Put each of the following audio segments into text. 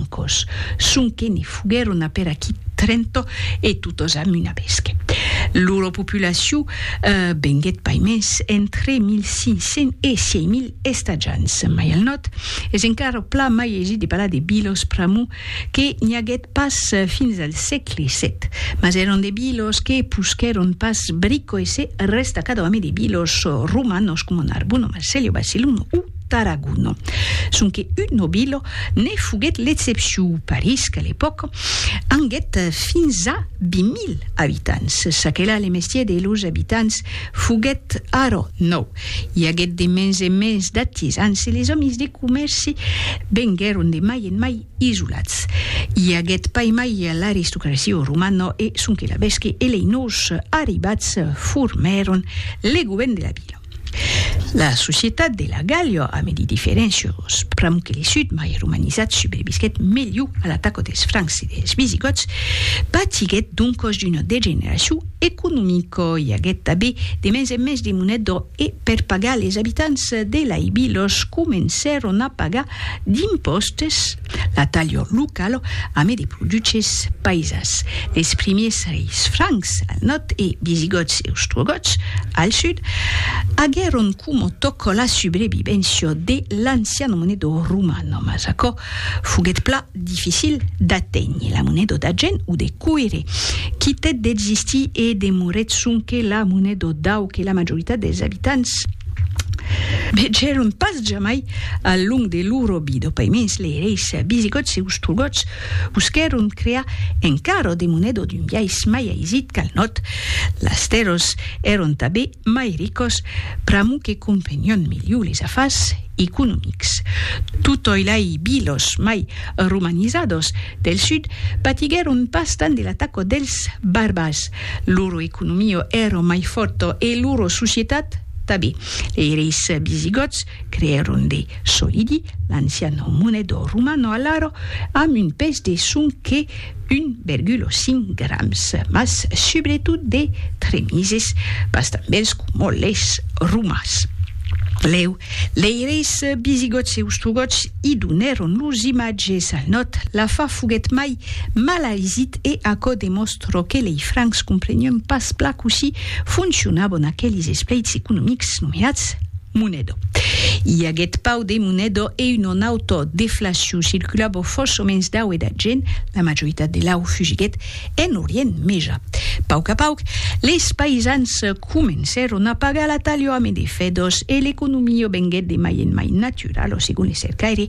francos, sonque ne foguèron a per aquí Trento e totos a Muna Besque. Lura populacion venguèt pas mens entre 1500 e 6000 estatjants, mai al nòrd es encara pla mai aisit de parlar de bilos pr'amor que n'i aguèt pas fins al sègle sèt, mas èran de bilos que posquèron pas brico e se restacada òme de bilos romanos coma Narbonne, Marselha, Barcelona o. Tarragona. Sonque un nobilo ne foguèt l'excepcion, París, qu'a l'epòca anguèt fins a 20.000 abitants. Çaquelà le mestièr de los abitants foguèt ara nòu. I aguèt de mens en mens d'artisans e les òmis de comèrci venguèron de mai en mai isolats. I aguèt pas mai l'aristocracia o romana e sonque la vèsque e lei nòus arribats formèron le govèrn de la vila. La societat de la Gàllia a medi diferéncios, pr'amor que le sud, mai romanizat, subrevisquèt melhor a l'ataca dels Francs e dels Visigòts, patiguèt doncas d'una degeneracion economica. I aguèt tanben de mens en mens de moneda e per pagar les abitants de laibilos comencèron a pagar d'impòstes. La talha locala amé de produches paisas, les primiers reis francs al nòrd e visigòts e ostrogòts al sud aguèron coma tòca la subrevivéncia de l'ancian moneda romana, mas aquò foguèt plan dificil d'aténher. La moneda d'argent o de coire quitèt d'existir e demorèt sonque la moneda d'au que la majoritat dels abitants, vegèron pas jamai al long de lor obida. Paimens lereis visigòts e ostrogòts busquèron crear encara de moneda d'un biais mai aisit qu'al nòt. Las tèrras èron tanben mai ricas, pr'amor que comprenián melhor les afars economics. Totòi lai vilas mai romanizadas del sud patiguèron pas tant de l'ataca dels barbars. Loro economio ero mai forto e loro societat tabé. Lei reis visigòts creèron de solidi l'anciano monedor romano alaro amb un pes de sonque 1,5 grams, mas subretot de tremises, pas tanbèls coma leis romans. Leu, lei reis visigòts e ostrogòts i donèron lors imatges al nòt, la fa foguèt mai malaisit e aquò demòstra Çò que lei francs comprenion pas plan cossí foncionabon aquelis espleits economics nomeats monedo. I aguèt pau de monedo e un o n'auto deflacion circulabon fòs o mens dau e da gent, la majoritat de lau fugiguèt en Orient Meja. Pauc a pauc, leis paisans comencèron a pagar la talio ame de fèdos e l'economio venguèt de mai en mai natural o segon le cercaire,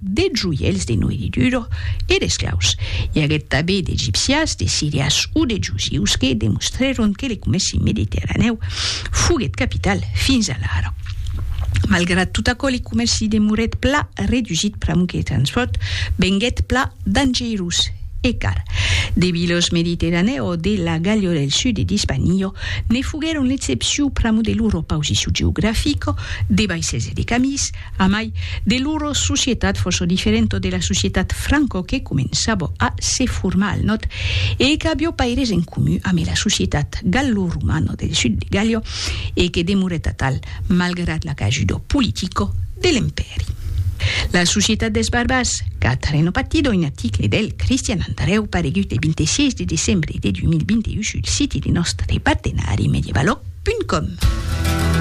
de joièls de noirridura e d'esclaus. I aguèt tabé d'Egipcias, de Sirias o de Jusius que demostrèron que le comèci mediterranèu foguèt capital fins alara. Malgrat tot aquò, le comèci demorèt pla redusít pr'amor que le transpòrt venguèt pla dangerós e car. De vilos mediterranèu o de la Gàllia o del sud d'Ispania ne foguèron l'excepcion pr'amor de lor opausicion geografica, de vaissèls e de camins, A mai, de loro societat fòsso diferento de la societat Franco que començavo a se formar al nòt e qu'avió paires en comu ame la societat gallo-romano del sud de Gallo e que demorèt atal malgrat l'acajudo politico de l'Empèri. La societat des Barbas, Catareno Pattido, un article del Cristian Andrèu paregut le 26 de decembre de 2021 sul siti de nòstre partenari medievalog.com.